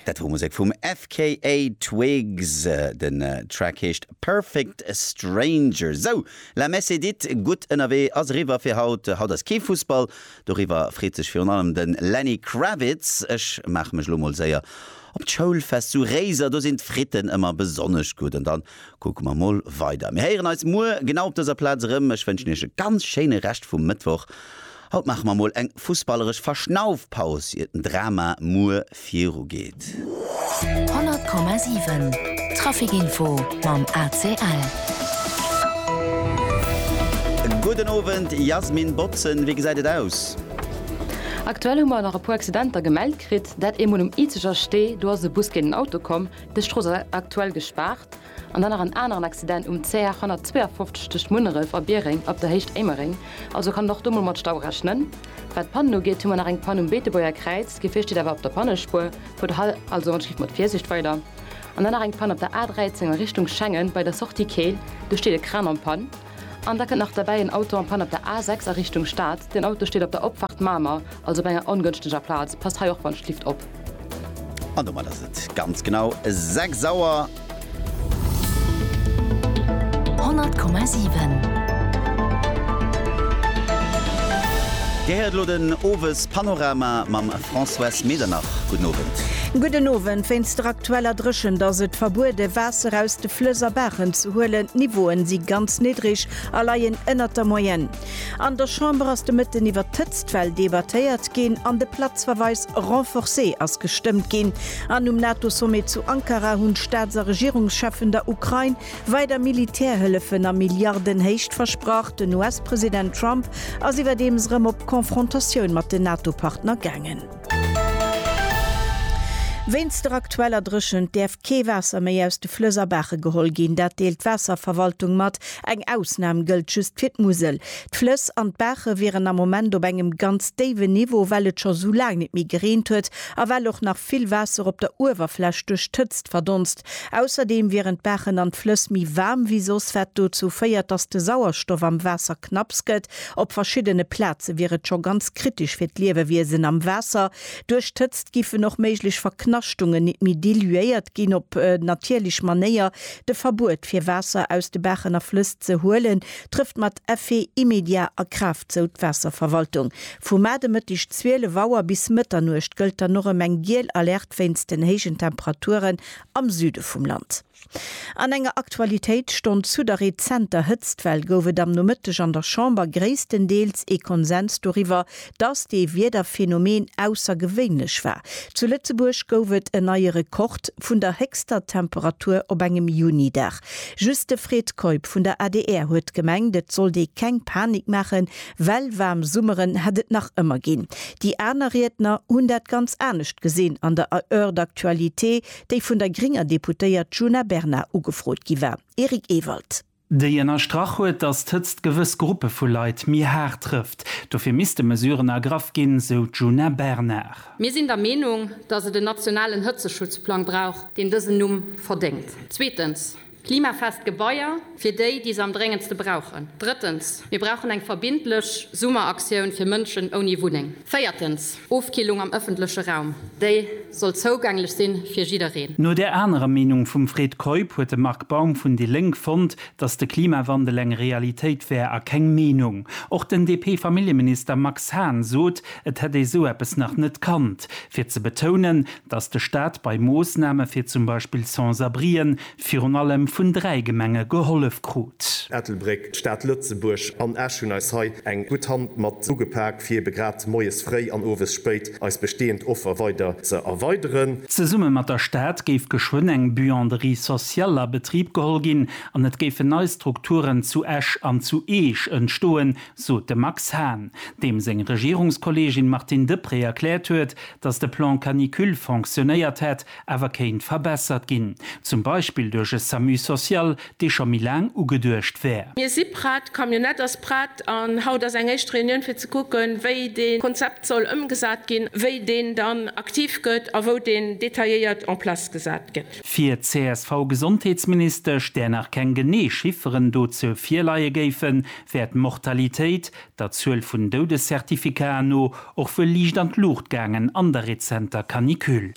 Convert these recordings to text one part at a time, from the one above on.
Dat wor Musek vum FKA Twigs. Den Track heescht Perfect Stranger. Sou, la messe est dite, gutt ënnerwee ass eriwwer fir haut. Haut ass kee Fussball, doriwwer freet sech virun allem de Lenny Kravitz. Ech maache mech elo mol séier op d'Schoulfest zu Réiser, do sinn d'Fritten ëmmer besonnesch gutt. An da kucke mer mol weider. Mir héieren eis muer genau op dëser Plaz erëm. Ech wënschen iech e ganz schéine Rescht vum Mëttwoch. Haut maache mer mol eng fussballeresch Verschnaufpaus ier den Drama muer viru geet. 100,7 Traficinfo mam ACL. Gudden Owend Jasmin Botzen, wéi gesäit et aus? Aktuell hu mer nach e puer Accidenter gemellt kritt. Dat eemol um Izeger Stee, do ass e Bus géint en Auto komm. Dës Strooss ass aktuell gespaart. an dann nach en aneren Accident um CR 152 tëscht Munneref a Biereng ab der Héicht Éimereng, also kann een och do mol mat Stau rechnen. Wat d'Pannen ugeet hu mer nach eng Pann um Beetebuerger Kräiz, d'Gefier steet awer op der Pannespuer, fuert also mat Schiff mat Virsiicht weider. An dann nach eng Pann op der A 13 a Richtung Schengen bei der Sortie Keel, do steet e Kran an Pann. An da kënnt nach derbäi en Auto en panne op der A6 a Richtung Stad. Deen Auto steet op der Opfahrt Mamer, also op enger ongënschteger Plaz. Passt hei och wann d'Lift op. An domat ass et ganz genau 6 Auer. 100,7. Dir héiert elo den Owespanorama mam. Françoise Medernach, Gudden Owend. Gudden Owend. Wéinst der aktueller Dréchent ass et verbuede Waasser aus de Flëss a Baachen ze huelen. D'Niveaue si ganz niddreg a leien ënnert der Moyenne. An der Chamber ass de Mëtten iwwert d'Hëtztwell debattéiert ginn an de Platzverweis renforcé ass gestëmmt ginn. An um NATO-Sommet zu Ankara hunn d'Staats a Regierungscheffen der Ukrain Weider Militärhëllefen a Milliardenhéicht versprach, den US-President Trump ass iwwerdeems erëm op Confrontatioun mat den NATO-Partner gaangen. Wéinst der aktueller Dréchent däerf kee Waasser méi aus de Flëss a Baache geholl ginn. Dat deelt d'Waasserverwaltung mat. Eng Ausnam gëllt just fir d'Musel. D'Flëss an d'Baache wieren am Moment op engem ganz déiwen Niveau, well et scho sou laang net méi gereent huet a well och nach vill Waasser op der Uewerfläch duerch d'Hëtzt verdonst. Ausserdeem wieren d'Baachen an d'Flëss méi waarm wéi soss, wat dozou féiert, datt de Sauerstoff am Waasser knapps gëtt. Op verschiddene Plaze wier et scho ganz kritesch fir d'Liewewiesen am Waasser. Duerch d'Hëtzt giffen och méiglech Verknaschtungen nit méi diluéiert ginn. Op natierlech Manéier de Verbuet fir Waasser aus de Baachen a Flëss ze huelen, trëfft mat Effet immédiat a Kraaft, sou d'Waasserverwaltung. Vu Mar de Mëtteg 12 Auer bis Mëtternuecht gëllt dann och erëm eng giel Alerte. wéinst den héijen Temperaturen am Süde vum Land. An enger Aktualitéitsstonn zu der rezenter Hëtztwell gouf et am Nomëtteg an der Chamber gréisstendeels ee Konsens doriwwer, dass dee Wiederphänomen aussergewéinlech war. Zu Lëtzebuerg gouf et en neie Rekord vun der héchster Temperatur op engem Juni-Dag. Just de Fred Keup vun der adr huet gemengt, et sollt ee keng Panik maachen, Well waarm Summeren hätt et nach ëmmer ginn. Déi aner Riedner hunn dat ganz anescht gesinn an der Heure d'actualité, déi vun der grénger Deputéiert Djuna Bernard ugefrot gi war. Eric Ewald. Déi ënnerstrach huet, datt d'Hëtzt gewëss Gruppe vu Leit méi haart trëfft. Dofir misste Mesuren ergraff ginn, sou d'Djuna Bernard. Mir sinn der Meenung, datt et en nationalen Hëtzeschutzplang brauch, deen dësen Numm verdéngt. Zweetens. Klimafest Gebaier fir déi, déi se am dréngendste brauchen. Drëttens, mir brauchen eng verbindlech Summeraktioun fir Mënschen ouni Wunneng. Véiertens, Ofkillung am ëffentleche Raum, déi soll zougänglech sinn fir jiddereen. No där anerer Meenung vum Fred Keup huet de Marc Baum vun déi Lénk fonnt, datt de Klimawandel eng Realitéit wär a keng Meenung. Och den DP-Familljeminister Max Hahn sot, et hätt ee sou eppes nach net kannt, fir ze betounen, dass de Staat bei Moossname fir zum Beispill Sans-abrien virun allem vun dräi Gemenge gehollef krut. Ettelbréck, d'Stad Lëtzebuerg an Esch hunn eis hei eng gutt Hand mat ugepak, fir ebe grad moies fréi an owes spéit eis bestehend Offer weider ze erweideren. Zesumme mat der Stad géif geschwënn eng Buanderie sociale a Betrib geholl ginn an et géifen nei Strukturen zu Esch an zu Eech entstoen, sot de Max Hahn, deem seng Regierungskolleegin Martine Deprez erkläert huet, datt de Plan canicule fonctionnéiert hätt, awer kéint verbessert ginn, zum Beispill duerch e Samu social, dee scho méi laang ugeduecht wär. Mir si prett, d'Camionnette ass prett an haut ass eng éischt Reunioun fir ze kucken, wéi dee Konzept soll ëmgesat ginn, wéi deen dann aktiv gëtt a wou deen detailléiert en place gesat gëtt. Fir d'CSV-Gesondheetsministesch, där nach keng genee Chifferen dozou virleie géifen, wär d'Mortalitéit, der Zuel vun Doudescertificaten no, och wuel liicht an d'Luucht gaangen an der rezenter Canicule.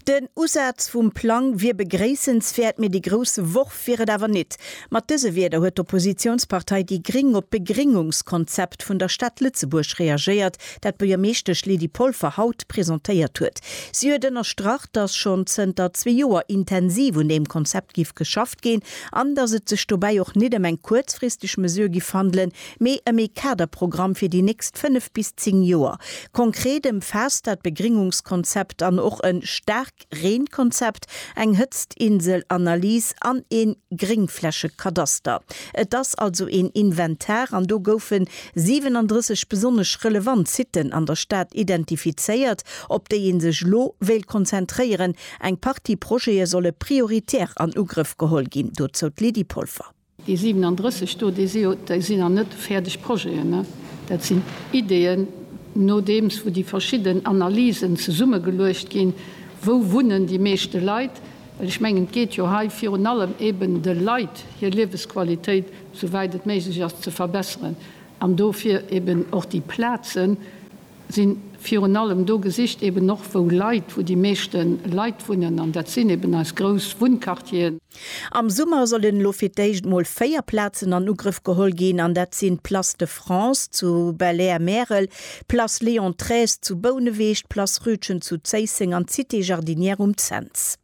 Den Usaz vum Plang wier begréissenswäert, mee dee grousse Worf wier et awer nit. Mat dëse Wierder huet d'Oppositiounspartei déi Gring op d'Begringungskonzept vun der Stad Lëtzebuerg reagéiert, dat d'Buergermeeschtesch Lydie Polfer haut presentéiert huet. Si huet ënnerstrach, datt schonn zënter zwee Joer intensiv un deem Konzept giff geschafft. gestoppt ginn an datt et sech dobäi och nit ëm eng kuerzfristeg Mesure giff handelen, mee ëm ee Kaderprogramm fir déi nächst fënnef bis zéng Joer. Konkret ëmfaasst dat Begringungskonzept an och e Staarkreenkonzept, eng Hëtztinselanalys an ee Gréngflächekadaster. Et ass also een Inventar an do goufe 37 besonnesch relevant Siten an der Stad identifizéiert, op déi ee sech elo wéilt konzentréieren, Eng Partie Projete solle prioritär an Ugrëff geholl ginn, dozou d'Lydie Polfer. Déi 37 do, déi sinn nach net fäerdeg Projeten. Dat sinn Ideeën, nodeems wou déi verschidden Analysen zesummegeluecht ginn, Wou wunnen déi meeschte Leit? Well ech mengen, et geet jo hei virun allem eben, de Leit hir Liewesqualitéit, souwäit et méiglech ass, ze verbesseren an dofir eben och déi Plazen, sinn virun allem do gesicht, eben och wou Leit, wou déi meeschte Leit wunnen, an dat sinn eben eis grouss Wunnquartieren. Am Summer sollen elo fir d'éischt mol véier Plazen an Ugrëff geholl ginn, an dat sinn d'Place de France zu Belair-Märel, d'Place Léon xiii zu Bouneweg, d'Place Rütgen zu Zéisseng an d'Cité Jardinière um Cents.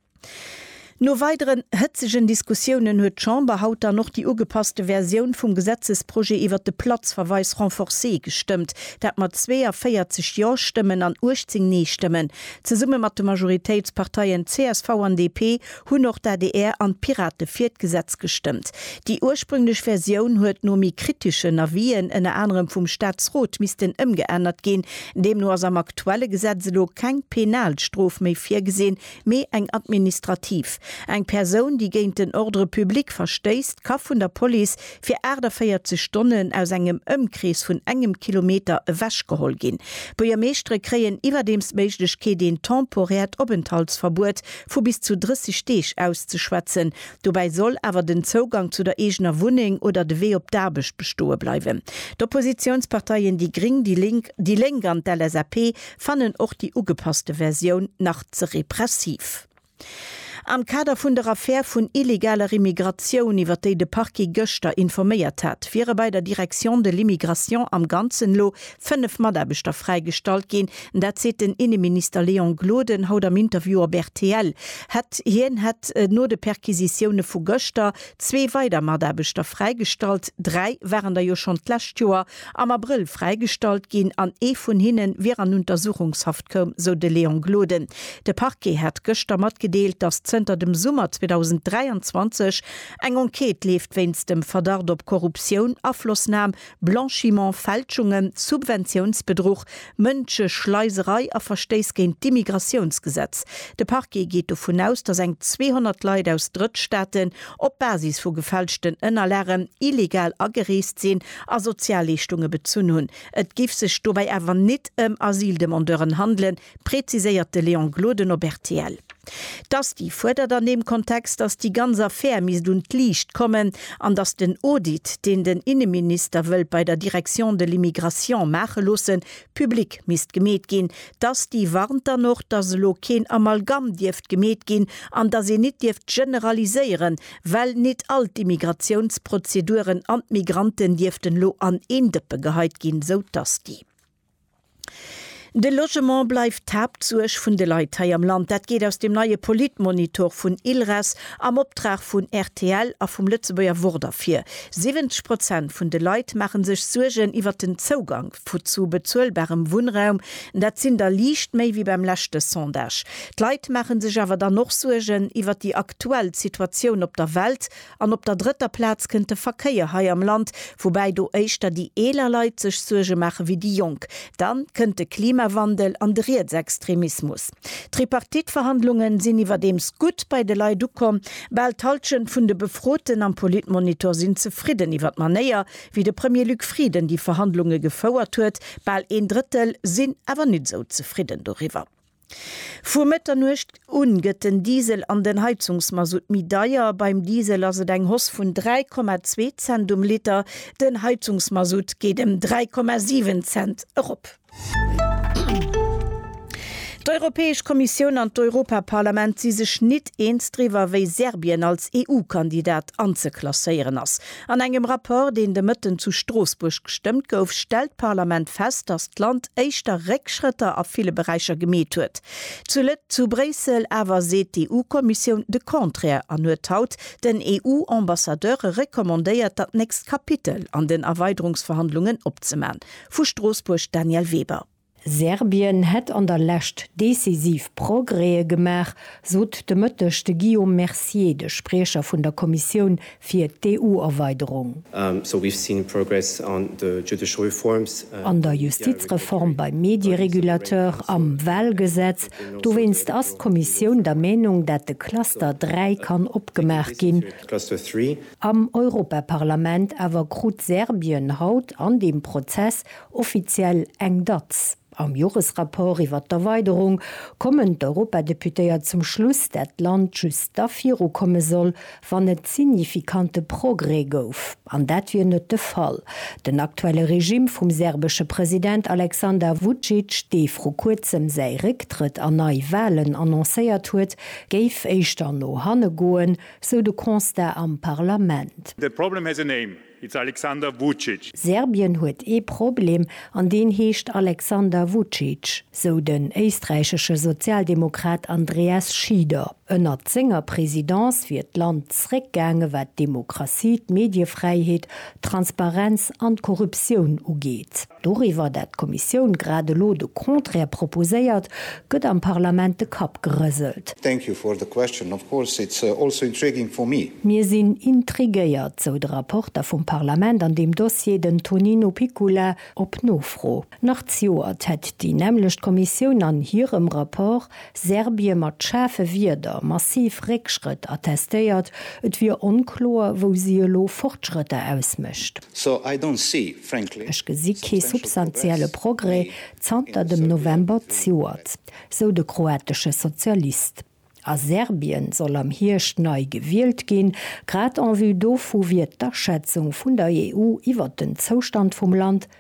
No weideren hëtzegen Diskussiounen huet d'Chamber haut dann och déi ugepasste Versioun vum Gesetzesprojet iwwert de Platzverweis renforcé gestëmmt, dat mat 42 Jo-Stëmmen an 18 Nee-Stëmmen. Zesumme mat de Majoritéitsparteien csv an DP hunn och d'ADR an d'Pirate fir d'Gesetz gestëmmt. Déi ursprünglech Versioun huet no méi kriteschen Avisen, ënner anerem vum Staatsrot, missten ëmgeännert ginn. Deemno ass am aktuelle Gesetz elo keng penal Strof méi virgesinn, Mee eng administrativ. Eng Persoun, déi géint den Ordre public verstéisst, ka vun der Police fir 48 Stonnen aus engem Ëmkrees vun engem Kilometer ewechgeholl ginn. D'Buergermeeschtere kréien iwwerdeems d'Méiglechkeet, een temporäert Openthaltsverbuet vu bis zu 30 Deeg auszeschwätzen. Dobäi soll awer den Zougang zu der eegener Wunneng oder de Wee op d'Aarbecht bestoe bleiwen. D'Oppositiounsparteien déi Gring, déi Lénk, déi Lénk an d'LSAP fannen och déi ugepasste Versioun nach ze repressiv. Am Kader vun der Affär vun illegaler Immigratioun, iwwer déi de Parquet gëschter informéiert hat, wiere bei der Direction de l'immigration am Ganzen elo 5 Mataarbechter fräigestallt ginn. Dat seet den Inneminister Léon Gloden haut am Interview op rtl. Hätt hien hätt no de Perquisitioune vu gëschter zwee weider Mataarbechter fräigestallt. Dräi waren der jo schonn d'lescht Joer. am Abrëll fräigestallt ginn an ee vun hinne wier an Untersuchungshaft koum, sou de Léon Gloden. De Parquet hat gëschter matgedeelt, datt zënter dem Summer 2023 eng Enquête leeft wéinst dem Verdacht op Korruptioun, Aflossnam, Blanchiment, Fälschungen, Subventiounsbedruch, Mënscheschleiserei a Verstéiss géint d'Immigratiounsgesetz. De Parquet geet dovun aus, datt eng 200 Leit aus Drëttstaaten op Basis vu gefälschten Ënnerlagen illegal agereest sinn a Sozialleeschtunge bezunn hunn. Et géif sech dobäi awer nit ëm Asyldemandeuren handelen, präziséiert de Léon Gloden op rtl. D'Asti fuerdert an deem Kontext, datt déi ganz Affär misst un d'Liicht kommen an datt den Audit, deen den Inneminister wëllt bei der Direction de l'immigration maache loossen, public misst gemeet ginn. D'Asti warnt dann och, datt elo keen Amalgamm dierft gemeet ginn an datt een nit dierft generaliséieren, Well nit all d'Immigratiounsprozeduren an d'Migranten dierften elo an een Dëppe geheit ginn, sou d'Asti. De Logement bleift d'Haaptsuerg vun de Leit hei am Land. Dat geet aus dem neie Politmonitor vun ILRES am Optrag vun rtl a vum Lëtzebuerger Wort ervir. 70 Prozent vun de Leit maache sech Suergen iwwert den Zougang zu bezuelbarem Wunnraum. Dat sinn der liicht méi wéi beim leschte Sondage. D'Leit maache sech awer dann och Suergen iwwert déi aktuell Situatioun op der Welt an op der drëtter Plaz kënnt de Verkéier hei am Land, woubäi do éischter déi eeler Leit sech Suerge maache wéi déi Jonk. Dann kënnt de Klimawandel an de Rietsextremismus. D'Tripartite-Verhandlunge sinn iwwerdeems gutt bei de Leit ukomm. Bal d'Hallschent vun de Befroten am Politmonitor sinn zefridden iwwer d'Manéier, wéi de Premier Luc Frieden déi Verhandlunge gefouert huet. Bal een Drëttel sinn awer nit esou zefridden doriwwer. Vu Mëtternuecht un gëtt den Diesel an den Heizungsmasutt méi deier. Beim Diesel ass et eng Hoss vun 3,2 Cent um Liter, den Heizungsmasutt geet em 3,7 Cent erop. D'Europäesch Kommissioun an d'Europaparlament si sech nit eens driwwer, wéi Serbien als EU-Kandidat anzeklasséieren ass. An engem Rapport, deen de Mëtten zu Stroossbuerg gestëmmt gouf, stellt d'Parlament fest, datt d'Land éischter Réckschrëtter a ville Beräicher gemeet huet. Zu zu Bréissel awer seet d'EU-Kommissioun de Contraire an huet haut den EU-Ambassadeure recommandéiert, dat nächst Kapitel an den Erweiderungsverhandlungen opzeman. Vu Stroossbuerg Danièle Weber. Serbien hätt an der Lescht decisiv Progrèse gemaach, sot de Mëtteg de Guillaume Mercier, de Spriecher vun der Kommissioun fir d'EU-Erweiderung. An der Justizreform, beim Medierégulateur, am Walgesetz. Dowéinst ass d'Kommissioun der Meenung, dat de Cluster 3 kann opgemaach ginn. Am Europaparlament awer krut Serbien haut an deem Prozess Offiziell eng Datz. Am Joresrapport iwwert d'Erweiderung kommen d'Europadeputéiert zum Schluss, dat d'Land just da virukomme soll, wann et signifikante Progrès gouf. An dat wier net de Fall. Den aktuelle Regime vum serbesche President Aleksandar Vucic, dee vru kuerzem säi Récktrëtt a nei Walen annoncéiert huet, géif éischter no hanne goen, sou de Constat am Parlament. That problem has a name. It's Alexander Vucic. Serbien huet ee Problem, an deen heescht Alexander Vucic, sou den éisträichesche Sozialdemokrat Andreas Schieder. Ënnert senger Presidence wier d'Land zréckgaange wat d'Demokratie, d'Mediefräiheet, d'Transparenz an d'Korruptioun ugeet. Doriwwer, dat d'Kommissioun grad elo de Contraire proposéiert, gëtt am Parlament de Kapp gerëselt. Thank you for the question. Of course it's also intriguing for me. Mir sinn intriguéiert, sou de Rapporter vum Parlament an deem Dossier, den Tonino Picula, op Nofro. Nach d'Joert hätt déi nämmlecht Kommissioun an hirem Rapport Serbie mat schaarfe Wierder massiv Réckschrëtt attestéiert, et wier onkloer, wou si elo Fortschrëtter ausmécht. Ech gesi kee substantielle Progrès zanter dem November zejoert, sou de kroatesche Sozialist. A Serbien soll am Hierscht nei gewielt ginn. Grad en vue dovu wier d'Aschätzung vun der EU iwwert den Zoustand vum Land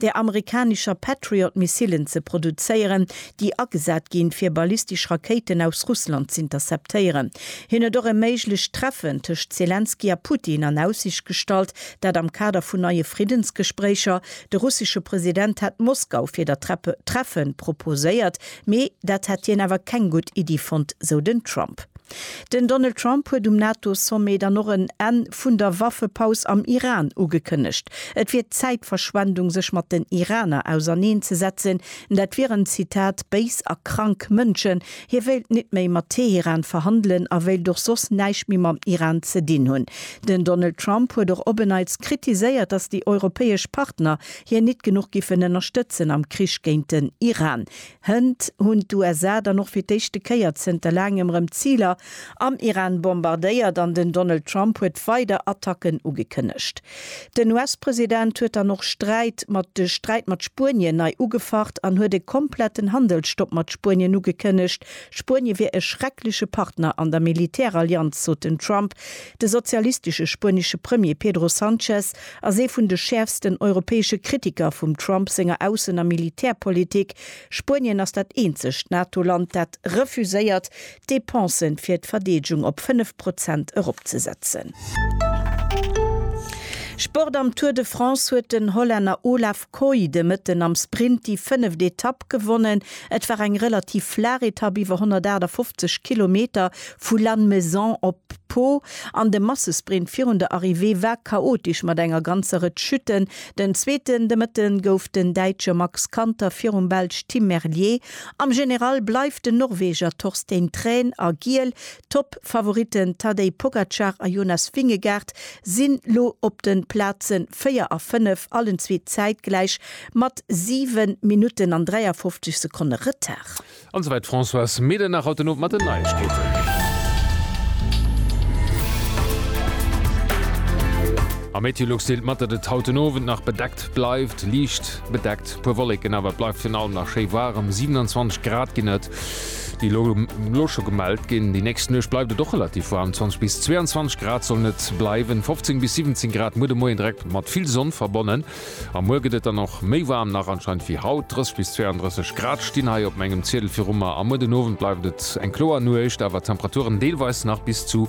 der amerikanischer Patriot-Missilen ze produzéieren, déi agesat ginn, fir ballistesch Rakéiten aus Russland z'interceptéieren. Hien huet och e méiglecht Treffen tëscht Selenskyj a Putin an Aussicht gestallt, dat am Kader vun neie Friddensgespréicher. De russesche President hätt Moskau fir dat Treffen proposéiert, mee dat hätt hien awer keng gutt Iddi fonnt, sou den Trump. Den Donald Trump huet um NATO-Sommet dann och en Enn vun der Waffepaus am Iran ugekënnegt. Et wier Zäitverschwendung sech mat den Iraner auserneen ze setzen, dat wieren, Zitat, béis a krank Mënschen. Hie wéilt nit méi mat Teheran verhandelen a wéilt och soss näischt méi mam Iran ze dinn hunn. Den Donald Trump huet och op en Neits kritiséiert, datt déi europäesch Partner hien nit genuch giffen ënnerstëtzen am Krich géint den Iran. Hënt hunn d'USA dann och fir d'éischte Kéier zënter laangem rëm Ziler am Iran bombardéiert an den Donald Trump huet weider Attacken ugekënnegt. Den US-President huet dann och Sträit mat de Sträit mat Spuenien nei ugefacht an huet e kompletten Handelsstopp mat Spuenien ugekënnegt. Spuenie wier e schreckleche Partner an der Militärallianz, sot den Trump. De sozialistesche spuenesche Premier Pedro Sanchez Ass ee vun de schäerfsten europäesche Kritiker vum Trump senger Aussen a Militärpolitik. Spuenien ass dat eenzegt NATO-Land, dat refuséiert, d'Depensë fir d'Verdeedegung op 5 Prozent eropzesetzen. Sport Am Tour de France huet den Hollänner Olaf. Koy de Mëtten am Sprint déi fënneft Etapp gewonnen. Et war eng relativ flaach Etapp iwwer 158 Kilometer vu Lannemezan op Pau an de Massesprint virun der Arrivée war chaotesch mat enger ganzer Rëtsch Chuten. Den Zweeten de Mëtte gouf den Däitsche Max Kanter virum Belsch Tim Merlier. Am General bleift den Norweger Torstein Thrane a Giel D'Top-Favoritten Tadej Pogacar a Jonas Vingegaard sinn lo op den Plazen 4 a 5, allen zwee zäitgläich mat 7 Minutten an 53 Sekonne Retard. An souwäit d'Françoise Medernach haut den Owend mat den Neiegkeeten. Am Meteolux deelt mat, datt et haut den Owend nach bedeckt bleift, liicht bedeckt, puer Wolleken awer, et bleift virun allem nach schéi waarem, 27 Grad ginn et. déi elo elo scho gemellt ginn. Déi nächst Nuecht bleift et och relativ waarm, 20 bis 22 Grad sollen et bleiwen, 15 bis 17 Grad muer de Moien, direkt mat vill Sonn verbonnen. A muer gëtt et dann och méi waarm nach anscheinend wéi haut, 30 bis 32 Grad stinn hei op mengem Ziedel viru mer. A muer den Owend bleift et eng kloer Nuecht, awer d'Temperaturen deelweis nach bis zu